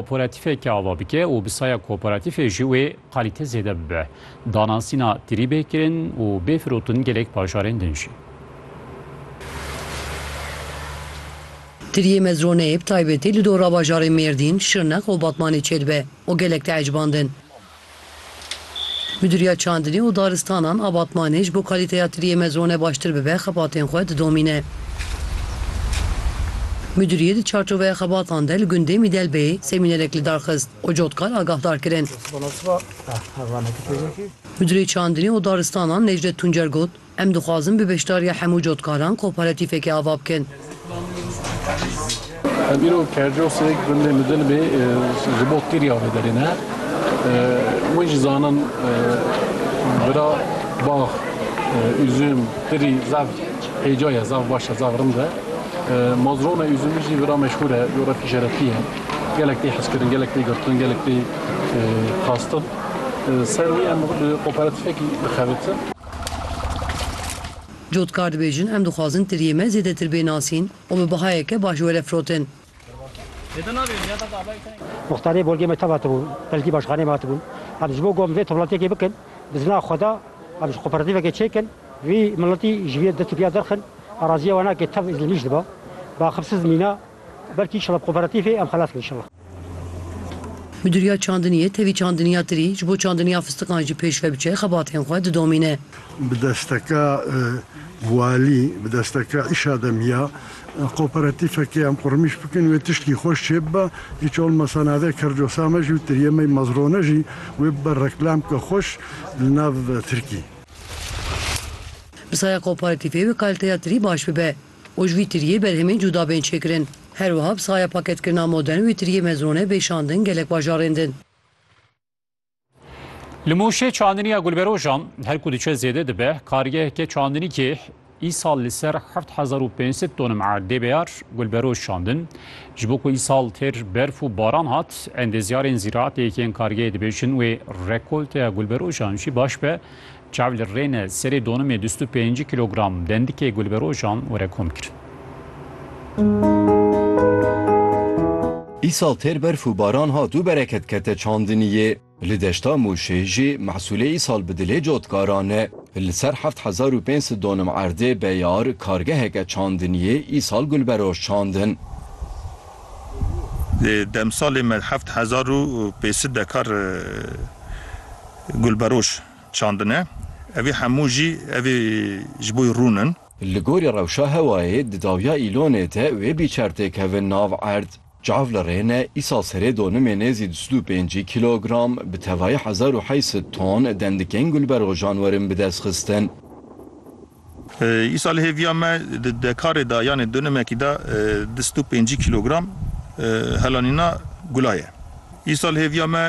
Koporatîfeke ava bike û bi saya koporatîfê jî wê qalîte zêde bibe. Danasîna tirî bê kirin û bê firotin gelek bajarên din jî. Tiriyê Mezroneyê bi taybetî li dora bajarên Mêrdîn, Şirnex û Batmanê çêdibe û gelek diecibandin. Midûriya Çandinê û Daristanan a Batmanê ji bo kalîteya tiriyê mezone baştir bibe xebatên xwe didomîne. Midûriyê di çarçoveya xebatan de li gundê Mîdelbeyê semînerek li dar xist û cotkar agahdar kirin. Midûrê Çandinê û Daristanan Necdet Tuncer got, Em dixwazin bi beşdariya hemû cotkaran koparatîfekê ava bikin. Em îro kercosek gundê Midilbê ji bo kiriya wê derê ne. Wê jî zanin bira bax, üzüm, kirî zaf hêca ye, zaf baş e, zaf rind e. Mazrona üzümî jî bira meşhûr e, îro re tîşerefî ye. Gelek tê hizkirin, gelek tê girtin, gelek tê xastin. Ser wî em bi koparatîfekî dixebitin. Cotkar dibêjin em dixwazin tiriyê me zêdetir bê nasîn û bi bihayeke baş were firotin. Muxtarê bolgê me tev hatibû, belkî başxaneyê me hatibû. Em ji bo ku em vê toplantyekê bikin, bi zina xwe de em ji kooperatîvekê çêkin, vî miletî ji vî dest û piya derxin, araziya we nake tev îzlmîş diba. Bi axibsiz mîna, belkî inşallah bi kooperatîvê em xelas bin inşallah. Midûriya çandiniyê tevî çandiniya tirî ji bo çandiniya fistiqan jî pêş ve biçe xebatên xwe didomîne. Bi desteka walî, bi desteka îşa de miya koperatîfekê em qurmîş bikin wê tiştî xweş çê bibe. Hiç olmasa navê Kercosa me jî û tiriyê me yê Mazrone jî wê bibe reklam bike xweş li nav tirkî. Bi saya koperatîfê wê kalîteya tirî baş bibe. û ji vî tiriyê berhemên cuda bên çêkirin. Her wiha bi saya paketkirina modern wê tiriyê mezrone bê şandin gelek bajarên din. Li Mûşê çandiniya gulberojan her ku diçe zêde dibe. Kargeheke çandinîkê îsal li ser heft hezar û pênc sed tonim erdê beyar gulberoj şandin. Ji bo ku îsal têr berf û baran hat, endezyarên zîraetê yekên kargehê dibêjin wê rekolteya gulberojan jî baş be. Çav li Rêne serê donimê du sed û pêncî kîlogram dendikê gulberojan were kom kir. Îsal têr berf û baran hat û bereket kete çandiniyê. Li deşta Mûşê jî mehsûlê îsal bi dilê cotkaran e. Li ser heft hezar û pênc sed donim erdê beyar kargeheke çandiniyê îsal gulberoj çandin. Di demsalê me heft hezar û pênc sed dekar gulberoj çandine. Evî hemû jî evî ji bo rûn in. Li gorî rewşa hewayê di dawiya Îlonê de wê bîçer tê kevin nav erd. Çav li rê ne, îsal serê donimê nêzî du sed û pêncî kîlogram, bi tevayî hezar û heşt sed ton, dendikên gulberxwejan werin bi dest xistin. Îsal li hêviya me di dekarê de yanê dûnimekî de du sed û pêncî kîlogram helanîna gula ye. Îsal li hêviya me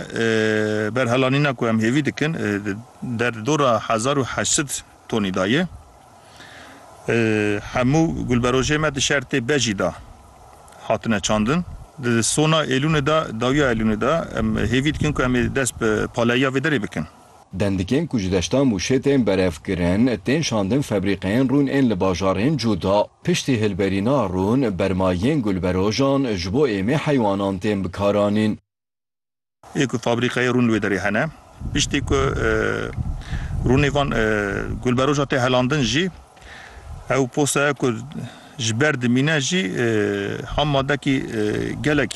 ber helanîna ku em hêvî dikin di der dora hezar û heşt sed tonî de ye. Hemû gulberojê me di şertê bejî de hatine çandin. Di sona Êlûnê de, dawiya Êlûnê de em hêvî dikin ku em ê dest bi paleyiya vê derê bikin. Dendikên ku ji deşta Mûşê tên berevkirin, tên şandin febrîqeyên rûn ên li bajarên cuda. Piştî hilberîna rûn, bermayiyên gulberojan ji bo êmê heywanan tên bikaranîn. Ê ku fabrîqeyê rûn li wê derê hene, piştî ku rûnê van gulberoja tê helandin jî Ew postaya ku ji ber dimîne jî ham madekî gelek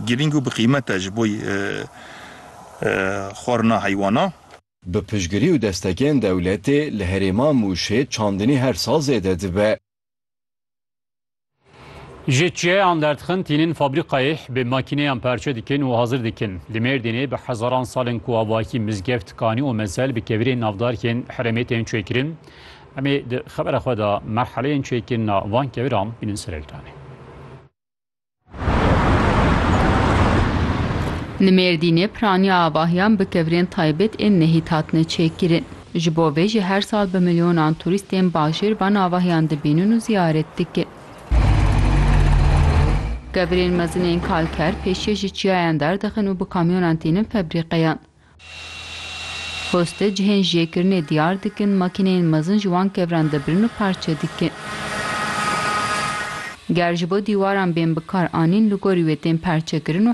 girîng û bi qîmet e ji bo xwarina heywana. Bi piştgirî û destekên dewletê li herêma Mûşê çandinî her sal zêde dibe. Ji çiyeyan derdixin tînin fabrîkayê bi makîneyan perçe dikin û hazir dikin. Li Mêrdînê bi hezaran sal in ku avahî mizgeft, kanî û mezel bi kevirên navdarkên herêmê tên çêkirin. Em ê di xebera xwe de merheleyên çêkirina van keviran bînin ser ekranê. Li Mêrdînê piraniya avahiyan bi kevirên taybet ên nehît hatine çêkirin. Ji bo vê jî her sal bi milyonan turîstên bajêr van avahiyan dibînin û ziyaret dikin. Kevirên mezinên kalker pêşiyê ji çiyayan derdixin û bi kamyonan tînin febrîqeyan. Poste cihên jêkirinê diyar dikin, makîneyên mezin ji wan kevran dibirin û parçe dikin. Ger ji bo dîwaran bên bikar anîn li gorî wê tên perçekirin û